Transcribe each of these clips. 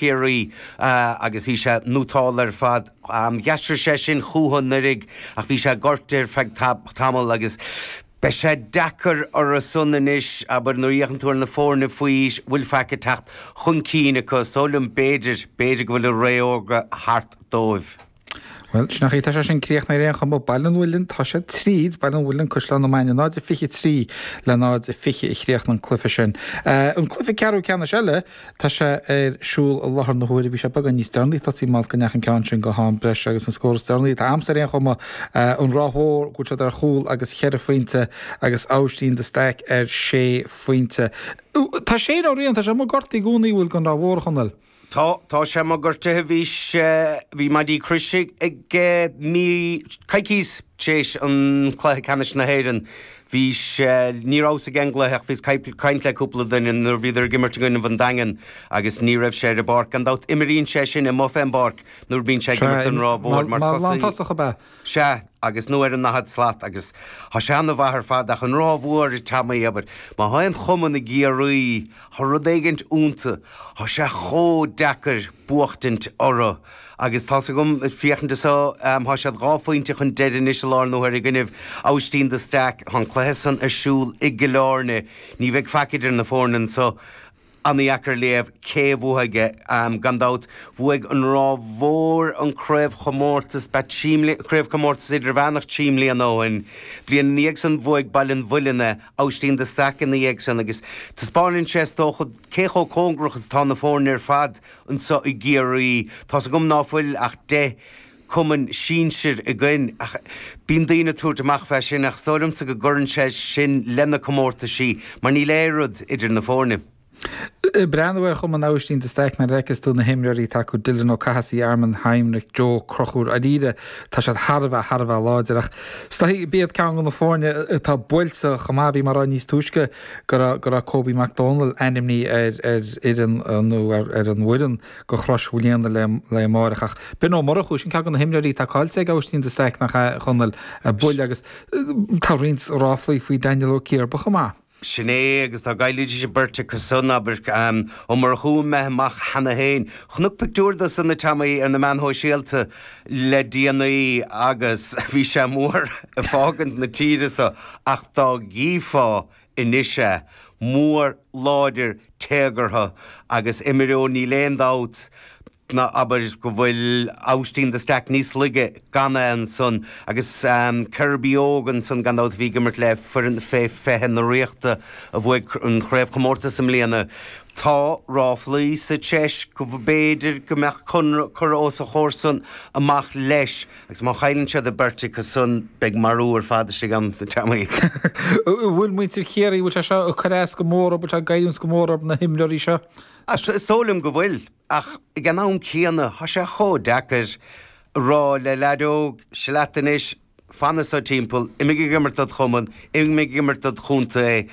Chiarraí, agus bhí sé nótálta ar fad. Dh'aistrigh sé sin chúthu anuraidh, ach bhí sé gortaithe ar feadh tamall, agus beidh sé deacair orthusan anois, abair, nuair a fhéachann tú ar na foirne faoi-aois a bhfuil faic ag teacht chun cinn acu. Is dóigh liom, b'fhéidir, b'fhéidir go bhfuil a ré órga thart dóibh. Bhuel, sin an chaoi, tá sé sin críochnaithe ar aon chuma ó Baile an Mhuilinn, tá sé tríd, Baile an Mhuilinn, Caisleán na Maine, 0-23 le 0-20 a chríochnaigh an cluiche sin. An cluiche ceathrú ceannais eile, tá sé ar siúl i láthair na huaire, bhí sé beagán níos deireanaí, thosaigh, mar go ndeachaigh an ceann sin go ham breise agus an scór is deireanaí, atá agamsa ar aon chuma, An Ráth Mhór go bhfuil siad ar chúl agus cheithre phointe agus Aibhistín de Staic ar sé phointe. Tá Shane Ó Riain, tá sé amuigh gortaithe i gcónaí, an bhfuil, don Ráth Mhór, a Chonaill. Tá, tá sé amuigh gortaithe bhí sé, bhí maidí croise aige mí, coicís tar éis an Cluiche Ceannais na hÉireann. Bhí sé, ní rabhas ag aon gcluiche ach bhíos ag caint le cúpla duine nuair a bhíodar ag imirt i gcoinnibh an Daingin agus ní raibh sé ar an bpáirc. Gan dabht imríonn sé sin amuigh fén bpáirc nuair a bhíonn sé ag imirt don Ráth Mhór mar thosaí. Mar lántosach ab ea? Sea, agus nó ar an ndaichead slat, agus thá sé an-mhaith ar fad, ach an Ráth Mhór, a Teamaí, abair, má thá aon chumann i gCiarraí, thá rud éigint iontu, thá sé chomh deacair buachtaint orthu, agus tá's agam ag féachaint anso, thá siad dhá phointe chun deiridh anois i láthair na huaire i gcoinnibh Aibhistín de Staic, thá an cluiche san ar siúl i gCill Áirne, ní bheidh faic idir na foirne anso, An-dheacair léamh cé a bhuafaidh aige. Gan dabht, bhuaigh an Ráth Mhór an craobhchomórtas ba trí, craobhchomórtas idirmheánach trí bliana ó shin. Bliain ina dhiaidh san bhuaigh Baile an Mhuilinn é, Aibhistín de Staic ina dhiaidh san agus taispeáineann sé, is dócha, cé chomh cóngarach is atá na foirne ar fad anseo i gCiarraí. Tá's agam ná fuil ach deich. cumann sinsir againn. Ach bíonn daoine ag tabhairt amach fé sin, ach is dóigh liomsa go gcuireann sé sin leis na comórtaisí, mar níl aon rud idir na foirne. Breathnaigh ar Chumann Aibhistín de Staic nuair a fheiceas tú na himreoirí atá acu, Dylan Ó Cathasaigh, Armin Heinrich, Joe Ó Conchúir, Dháiríre tá siad thar a bheith, thar a bheith láidir. Ach is dóichí, b'iad ceann de na foirne atá buailte chomh maith. Bhí mé ag rá níos túisce go raibh, go raibh Kobe McDonald ainmnithe ar, ar fhoireann nó ar, ar an bhfoireann. do Chrois Mhaoilíona le haghaidh amáireach ach Ben Ó Murchú, sin ceann de na himreoirí atá caillte ag Aibhistín de Staic nach ea, a Chonaill, bhuel agus tá roinnt ráflaí faoi Daniel Ó Ciarba chomh maith. Sin é, agus dá gcaillfidís an bheirt acu san, abair, Ó Murchú, imithe amach cheana féin. Chonac pictiúr dó san, a Teamaí, ar na meáin shóisialta le déanaí agus bhí sé mór ag fágaint na tíre so ach dá gcífeá anois é, mór, láidir, téagartha agus imreoir níl aon dabht ná abair go bhfuil Aibhistín de Staic níos laige gan é ansan agus Kirby óg ansan gan dabht a bhí ag imirt le foireann fé fiche na Ríochta a bhuaigh an Chraobhchomórtas i mbliana. Tá ráflaí sa tsiúl go mb'fhéidir go mbeadh Conradh curtha os a chomhair san amach leis. Agus má chailleann siad a beirt acu san, beidh marú ar fad istigh ann, a Tommy. An bhfuil muintir Chiarraí, an bhfuil sé seo ag cur as go mór, an bhfuil sé ag goilliúint go mór ar na himreoirí seo? Is dóigh liom go bhfuil, ach ag an am céanna, tá sé chomh deacair a rá le leaid óg, Stad anois, fan anseo timpeall, imigh ag imirt dod' chumann, imigh ag imirt dod' chontae,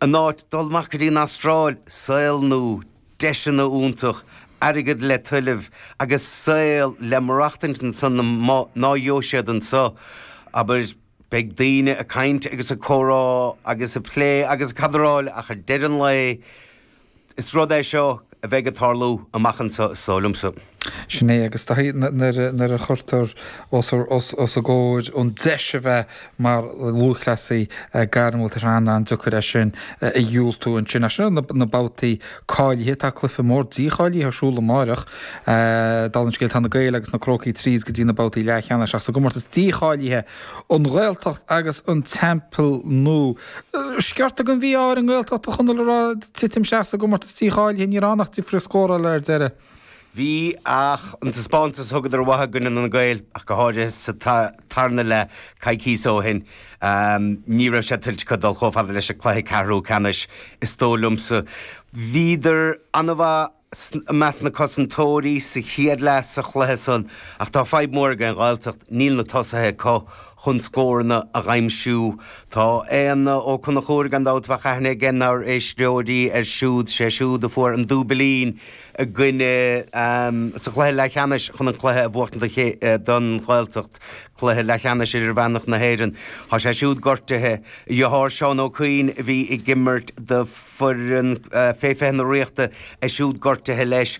in áit dul amach go dtí an Astráil, saol nua. deiseanna iontacha, airgead le tuilleamh agus saol le maireachtaint ansan ná gheobhadh siad anso, abair, beidh daoine ag caint agus ag comhrá agus ag plé agus ag cadráil ach ar deireadh an lae is rud é seo a bheidh ag tarlú amach anso is dóigh liomsa. Sin é, agus nuair a chuirtear os a gcomhair an deis a bheith mar lúthchleasaí gairmiúil, tá sé an-an-deacair é sin a dhiúltú. Anois, sna babhtaí cáilithe, tá cluiche mór dícháilithe ar siúl amáireach. Dála an scéil, tá na Gaeil agus na Crócaigh tríd go dtí na babhtaí leathcheannais, ach sa gcomórtas dícháilithe, An Ghaeltacht agus An Teampall Nua. Sciorta den mhí-ádh ar an nGaeltacht, a Chonaill, a rá titim isteach sa gcomórtas dícháilithe. Ní raibh ann ach difear scórála ar deireadh. Bhí, ach an taispeántas a thugadar uathu i gcoinne na nGael, ach go háirithe, sa tarna leath coicíos ó shin, ní raibh sé tuillte acu dul chomh fada leis an cluiche ceathrú ceannais, is dóigh liomsa. Bhíodar an-mhaith i measc na gcosantóirí sa chéad leath sa chluiche san, ach tá fadhb mhór ag an Ghaeltacht, níl na tosaithe acu. chun scóranna a dh'aimsiú. Tá Éanna Ó Conchúir, gan dabht, bheadh aithne aige nár n-éisteoirí air siúd, sé siúd a fuair an dúbilín i gcoinne sa chluiche leathcheannais chun an cluiche a bhuachtaint don Ghaeltacht, cluiche leathcheannais idirmheánach na hÉireann. Tá sé siúd gortaithe. A dheartháir Seán Ó Cuinn a bhí ag imirt do fhoireann fé 20 na Ríochta, é siúd gortaithe leis.